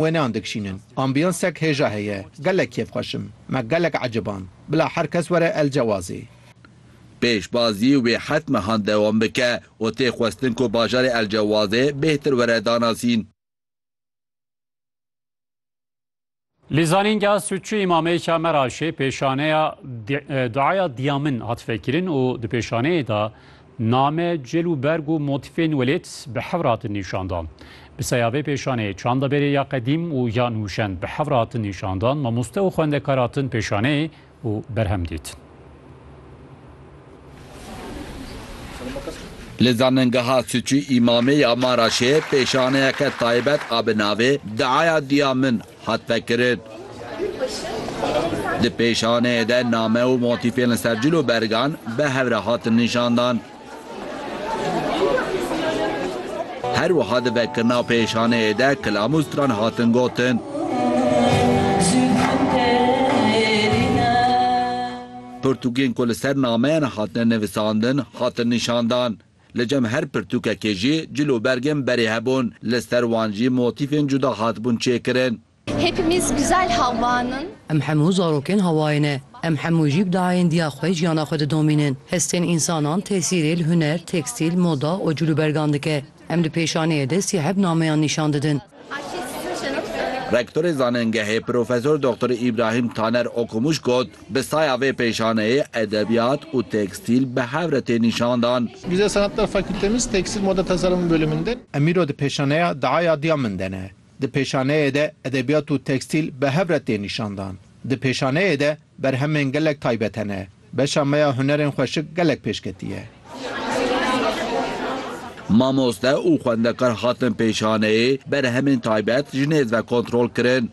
Wêneyan dikişînin. Ambîyansek hêja heye. Gelek kêf xweş im. Me gelek eciband. Bila her kes were El Cewazê. Pêşbazî wê heft mehan dewam bike û tê xwestin ku bajarê El Cewazê bêhtir were danasîn. Lîzanînga Sûtçû Îmamêka Meraşê pêşaneya Duaya Dîyamin hat vekirin û di pêşaneyê de Name, cil û berg û motîfên welêt bi hewr hatin nîşandan. Bi seya vê pêşaneyê çanda berê ya qedîm û ya nûşen bi hewr hatin nîşandan, mamoste û xwendekar hatin pêşaneyê û berhem dîtin. Li Zanîngeha Sûçî Îmamê ya Maraşê pêşaneyeke taybet a bi navê Diaya Diya Min Hat vekirin. Di pêşaneyê de name û motîfên li ser cil û bergan bi hev re hatin nîşandan. Her wiha di vekirina pêşaneyê de kilam û stran hatin gotin. Pirtûkên ku li ser nameyan hatine nivîsandin hatin nîşandan. Li cem her pirtûkekê jî cil û bergên berê hebûn, li ser wan jî motîfên cuda hatibûn çêkirin. Hepimiz güzel hawan in. Em hemû zarokên hawayê ne. Em hemû jî bi dayêndiya xwe jiyana xwe didomînin. Hestên însanan tesîrê li huner, tekstîl, moda û cil û bergan dike. Em di pêşaneyê de sî heb nameyan nîşan didin. Rektorê zanengehê Profesor Doxtor Îbrahîm Taner Okumuş got, Bi saya vê pêşaneyê edebiyat û tekstîl bi hev re tê nîşandan. Güzel Sanatlar Fakültemiz Tekstil Moda Tasarımı Bölümünde. Emîro di pêşaneya Diaya Diya Min de ne. Di pêşaneyê de edebiyat û tekstîl bi hev re tê nîşandan. Di pêşaneyê de berhemên gelek taybet hene. Beşa me ya hunerên xweşik gelek pêş ketiye. Mamoste û xwendekar hatin pêşaneyê, berhemên taybet ji nêz ve kontrol kirin.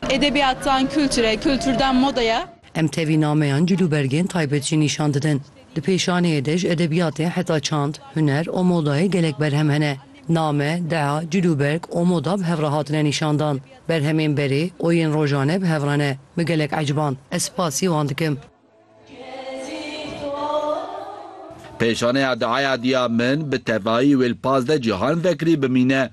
Edebiyattan kültüre, kültürden modaya. Em tevî nameyan cilûbergên taybet jî nîşan didin. Di pêşaneyê de ji edebiyatê heta çand, huner û modayê gelek berhem hene. Name, dea, cil û berg û moda bi hev re hatine nîşandan. Berhemên berê û yên rojane bi hev re ne. Min gelek eciband. Ez spasî wan dikim. Pêşaneya deaya diya min bi tevayî wê li pazdeh cîhan vekirî bimîne.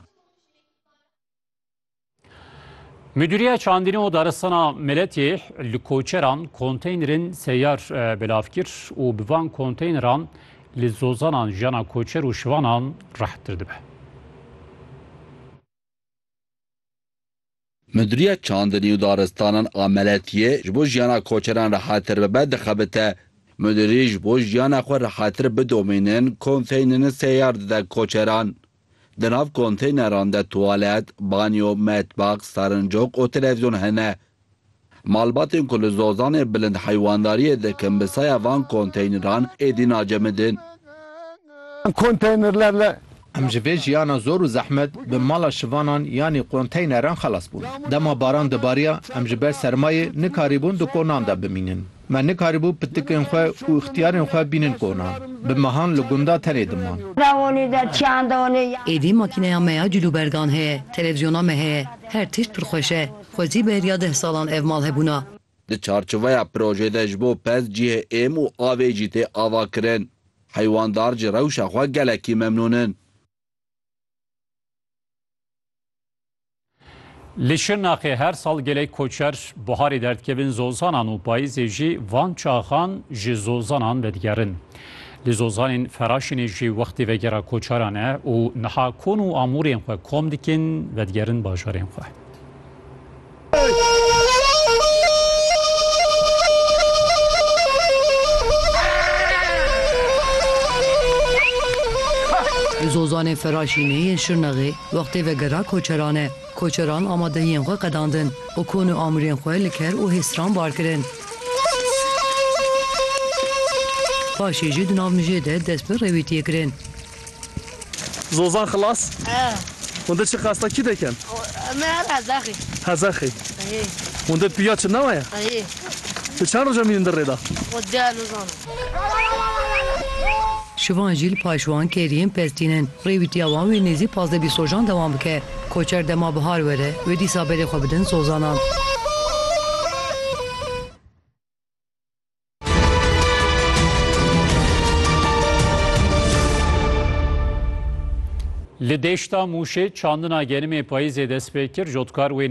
Müdüriye Çandînê û Daristana Miletê li koçeran konteynerên seyar e, belav kir û bi van konteyneran li zozanan jiyana koçer û şivanan rehettir dibe. Müdüriye Çandinî û Daristanan a Meletiyê ji bo jiyana koçeran rehettir bibe dixebite. Müdürî ji bo jiyana xwe rehettir bidomînin konteynerên seyar dide koçeran. Di nav konteyneran de tuwalet, banyo, metbax, serincok û televizyon hene. Malbatên ku li Zozanê bilind heywandariyê dikin bi saya van konteyneran êdî nacemidin. Em ji vê jiyana zor û zehmet bi mala şivanan yanî konteyneran xelas bûn. Dema baran dibariya em ji ber sermayê nikarîbûn di konan de bimînin. Me nikarîbû pitikên xwe û îxtiyarên xwe bînin kona. Bi mehan li gunda tenê diman. Êdî makîneya me ya cilûbergan heye, televîzyona me heye. Her tişt pir xweş e. Xwezî beriya deh salan ev mal hebûna. Di çarçiveya projê de ji bo pez cihê êm û avê jî tê avakirin. Heywandar ji rewşa xwe gelekî memnûn in. Li Şirnexê her sal gelek koçer buharê derdikevin zozanan û payîzê jî van çaxan ji zozanan vedigerin. Li zozanên Feraşinê jî wextê vegera koçeran e û niha kon û amûrên xwe kom dikin vedigerin bajarên xwe. Li zozanê Feraşinê yên Şirnexê Wextê vegera koçeran e. Koçeran amadehiyên xwe qedandin û kon û amûrên xwe li ker û hêsran bar kirin. Paşê jî di nav mijê de dest bi rêwîtiyê kirin. Zozan xilas? Hûn di çi qasta kî dikin? Me her hezexî. Hezexî? Hî. Hûn di piya çi nawa ye? Hî. Ti çend roja mînin di rê de? Xwe diyar nizanim. Şivan jî li paş wan kêriyên pez tînin. Rêwîtiya wan wê nêzî pazdeh bîst rojan dewam bike. Koçer dema bihar were, wê dîsa berê xwe bidin sozanan. Li deşta Mûşê çandina gerimê payîzê dest pê kir, jotkar wê nêzî.